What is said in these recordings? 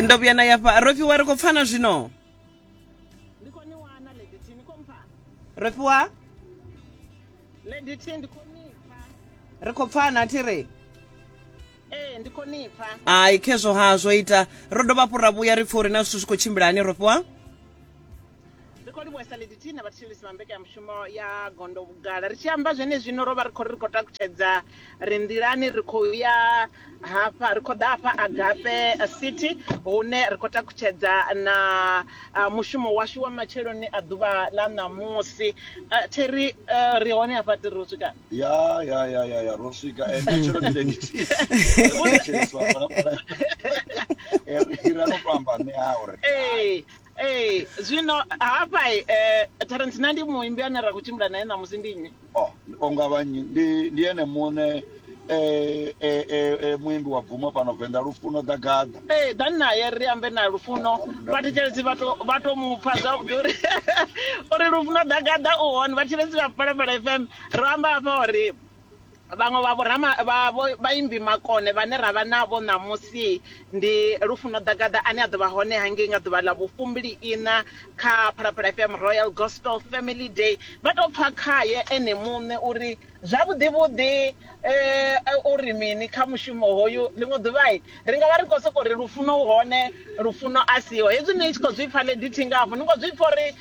ndo vhuya na yafha rofhiwa ri khou pfana zwino rofhiwa ri khou pfana thi ri ee ndi khonipfa ai khezwo ha zwo ita ro dovha hafhu ra vhuya ri pfha uri na zwithu zwi khou tshimbila hani rofhiwa Ri khou livhuhesa Liditi na vhathetshelesi vha mbekanyamushumo ya Gondo Vhugala. Ri tshi amba zwenezwino ro vha ri khou ri ri khou takutshedza ri nḓilani ri khou ya hafha ri khou ḓa hafha Agape City hune ri khou takutshedza na ah, mushumo washu wa matsheloni a ḓuvha ḽa ṋamusi. Ah, Theri eh, ri hone hafha ri ro swika. ya ya ya ya ya ro swika Eh, nṋe tshelo ndi lediti ro thetsheleswa fhala fhala Eh, ri ra no to amba ṋe a uri Ee, Ee, zwino hafha eh, Terence na ndi muimbi ane ra khou tshimbila naye ṋamusi ndi nnyi? oh o nga vha nnyi ndi ndi ene muṋe eh, eh, eh, eh, muimbi wa bvumo fhano venḓa lufuno ḓagaḓa Ee, ḓani naye ri ambe na Lufuno. Vhathetshelesi vha to vha to mu pfa zwavhuḓi uri uri Lufuno ḓagaḓa u hone. Vhathetshelesi vha Phalaphala FM ro amba hafha uri Vhaṅwe vha vhorama vha vho vhaimbi makone vhane ra vha navho ṋamusi ndi Lufuno Ḓagaḓa ane a ḓo vha hone hangei nga ḓuvha ḽa vhufumbili-iṋa kha Phalaphala FM Royal Gospel Family Day. Vha tou pfa khae ene muṋe uri zwavhuḓi-vhuḓi u ri mini kha mushumo hoyu. Ḽiṅwe ḓuvha ri nga vha ri khou sokou ri Lufuno u hone, Lufuno a siho. Hezwi ni tshi khou zwi pfa, Lady Thinga hafhu ni khou zwi pfa uri.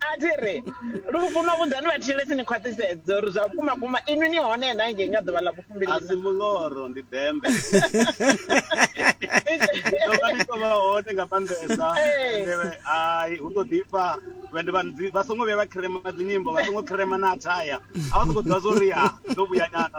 a thi ri lufuno vhudzani vhathetshelesi ni khwaṱhisedze uri zwa vhukuma kuma inwi ni hone na ngei nga ḓuvha ḽa vhufumbili a si muloro ndi dembe tonga ni tovha hone nga maanḓesa hai hu to ḓifha vhende vha songo vhuya vha khirema dzinyimbo vha songo khirema na athaya a vha songo ḓivha zwo ri ha ndo vhuya nyana